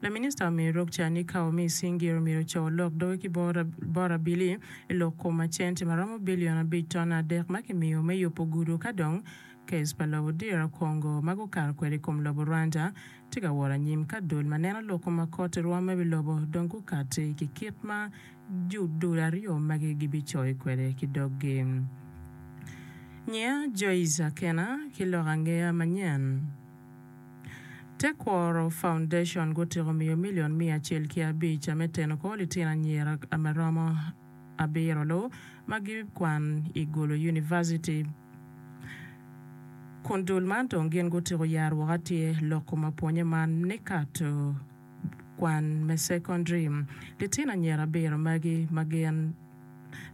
Laminista omiyo lok ca ni ka omi cing gire omyero co olok doge ki bot abili i lok kom ma centi ma romo bilion abic ton adek ma kimiyo me yubo gudo ka dong kec pa lobo dira Congo ma gukato kwede i kom lobo Rwanda tye ka wot anyim ka dul ma neno lok kom ma koti rwome wi lobo dong gukati ki kit ma ju dul aryo magi gibicoyo kwede ki doggi. Nyiya Joyce Akena ki lok angeya manyen. Tekwaro Foundation gutyeko miyo milion miya acel ki abic a me teno kor litino anyira a ma romo abiro lu ma gikwan i Gulu Univaciti kun dul man dong gin gutyeko yaro woko atir loko ma pwonye man ni Kato kwan me sekondari. Litino anyira abiro magi ma gin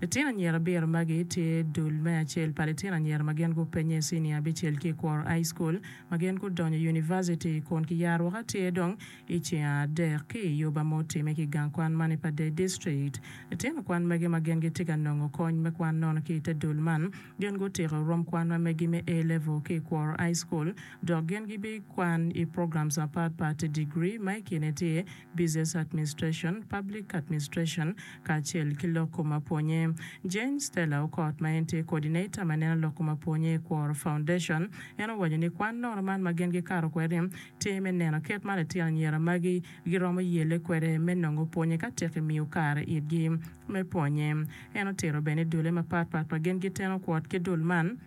Litino anyira abiro magi tye dul me acel pa litino anyira ma gin gupenye i cinia abicel ki i Kwor High School ma gin gudonyo univaciti kun kiyaro woko atir dong i ceng adek ki i yuba ma otimme ki gang kwan man i Padee District. Litino kwan magi ma gin gitye ka nongo kony me kwan nono ki i te dul man gin gutiko rom kwan ma megi me A-Level ki i Kwor High School dok gin gibikwan i programs mapat pat, digri ma i kine tye Business Administration, Public Administration, kacel ki lok kom apwonye. Jane Stella Okot ma en tye Coordinator ma neno lok kom apwonye i Kwor Foundation, en owaco ni kwan nono man ma gin gikato kwede-ni tye me neno kit ma litino anyira magi giromo yelle kwede me nongo pwonye ka tek imiyo kare itgi me pwonye. En otito bene ni dulle mapat pat ma gin giteno kwot ki dul man,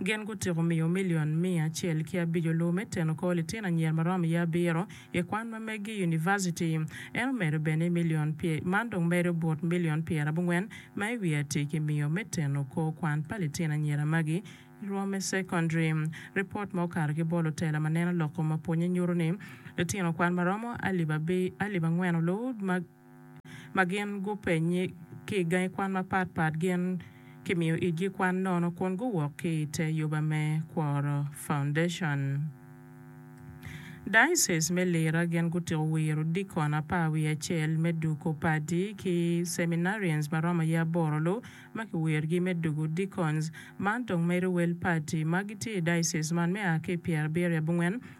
Gin gutyeko miyo milion miya acel ki abico lowo me teno kor litino anyira ma romo iye abiro i kwan ma meggi i univaciti. En omedo bene ni milion man dong medo bot milion pyerabongwen ma i wiye atir kimiyo me teno kor kwan pa litino anyira magi i rwom me cekondaria. Ripot ma okato ki bot lutela ma neno lok kom mapwonye nyuto ni litino kwan ma romo alip angwen oloo Ma gin gupenye ki i gangi kwan mapat pat, gin kimiyo itgi kwan nono kun guwok ki i te yoba me Kworo Foundation. Diocese me Lira gin gutiko wiro dikon apar wiye acel me duko padi ki Seminarians ma romo aye aboro lu ma kiwirogi me dugo deacons. Man dong medo wel padi ma gitye i diocese man me a ki i pyerabiriya bungwen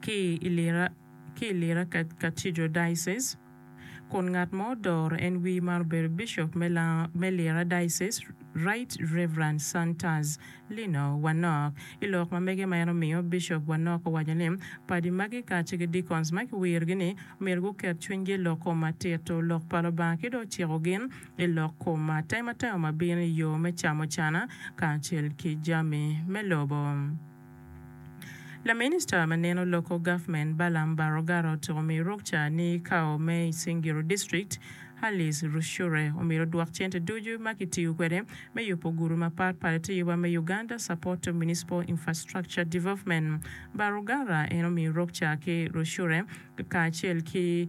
ki i Lira Cathedral Diocese, kun ngat ma odoro en wi man obedo Bishop me Lira Diocese, Right Rev. Santas Lino Wanok. I lok ma mege ma en omiyo, Bishop Wanok owaco ni, Padi magi kacel ki deacons ma kiwirogi ni myero guket cwinygi i lok kom matito lok pa Lubanga ki dong ciko gin i lok kom atematema ma bino i yo me camucana kacel ki jami me lobo. Laminista ma neno Local Government Balaam Baroggarot omiyo rukca ni kawo me Isingiro District Alice Rushure omyero odwok cente ducu ma kitiyo kwede me yubo gudu mapat pat ite yuba me Uganda Support to Municipal Infrastructure Development Baruggarra en omiyo rukca ki Rushure kacel ki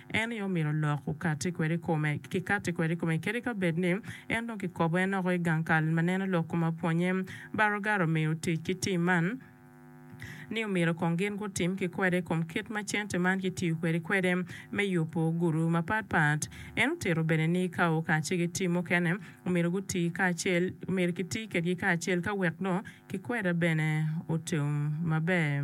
En aye omito lok okatti kwede i kome, kikatti kwede i kome kadi ka bed ni en dong kikobo en oko i gang kal ma neno lok kome apwonnye. Beauregard omiyo tic ki tim man ni omyero kong gin gutim ki kwede i kom kit ma cente man kitiyo kwede kwede me yubo guruwu mapat pat. En otito bene ni ka okaci ki tim mukene, omyero guti kacel, omyero kiti kedgi kacel ka wek dong kikweda bene otum maber.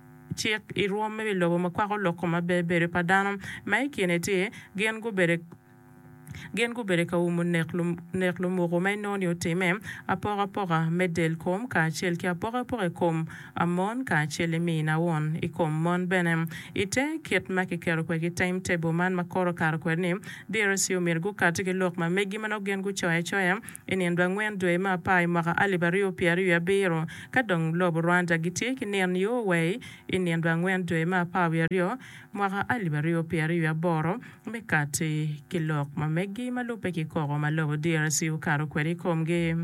cik i rwom me wi lobo ma kwako lok kom maber bedo pa dano, ma i kine tye, gin gubedo gin gubedo ka umo nek nek lumuku ma inongo ni otimme, apoko apoka me del kom kacel ki apoko apoka i kom mon kacel i mi nawon i kom mon bene. I te kit ma kiketo kwede ki time table man ma kore okato kwede ni, DRC omyero gukati ki lok ma megi ma nongo gin gucoyo acoya I nino angwen dwe me apar i mwaka alip aryo pyer aryo abiro, ka dong lobo Rwanda gitye ki nino yo wei i nino angwen dwe me apar wiye aryo mwaka alip aryo pyer aryo aboro me kati ki lok ma meggi ma lubbe ki koko ma lobo DRC okato kwede i komgi.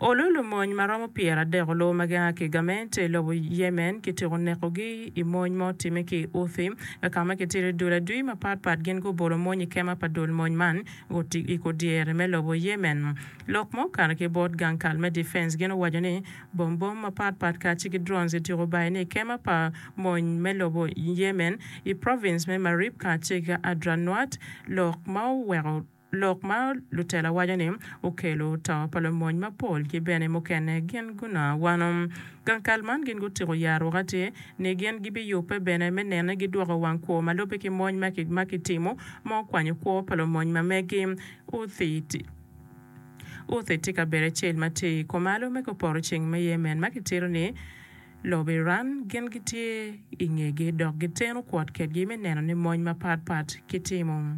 Olu lumony ma romo pyeradek olu ma gia ki i gamente i lobo Yemen kityeko nekogi i mony ma otimme ki i Houthi, ka ma kitidi dul adwi mapatpat gin gubolo mony i kema pa dul mony man i kor dyere me lobo Yemen. Lok ma okato ki bot gang kal me Defense gin owaco ni bom bom mapatpat kacel ki drones ityeko bayo ne i kema pa mony me lobo Yemen i province me Marib kacel ki Adranwat, lok ma oweko Lok ma Lutela waco ni okelo to pa lumony mapol ki bene mukene gin guna wano. Gang kal man gin gutiko ya aruka tye ni gin gibi yubbe bene me nene gi dwoko wang kwo ma lubbe ki mony ma ki timo ma okwanyo kwo pa lumony ma megi. Houthi tye kabedo acel ma tye i kumalo me kupoto ceng me Yemen ma ki tito ni lobo Iran gin gitye i ngegi dok giteno kwot kedgi me neno ni mony ma pat pat ki timo.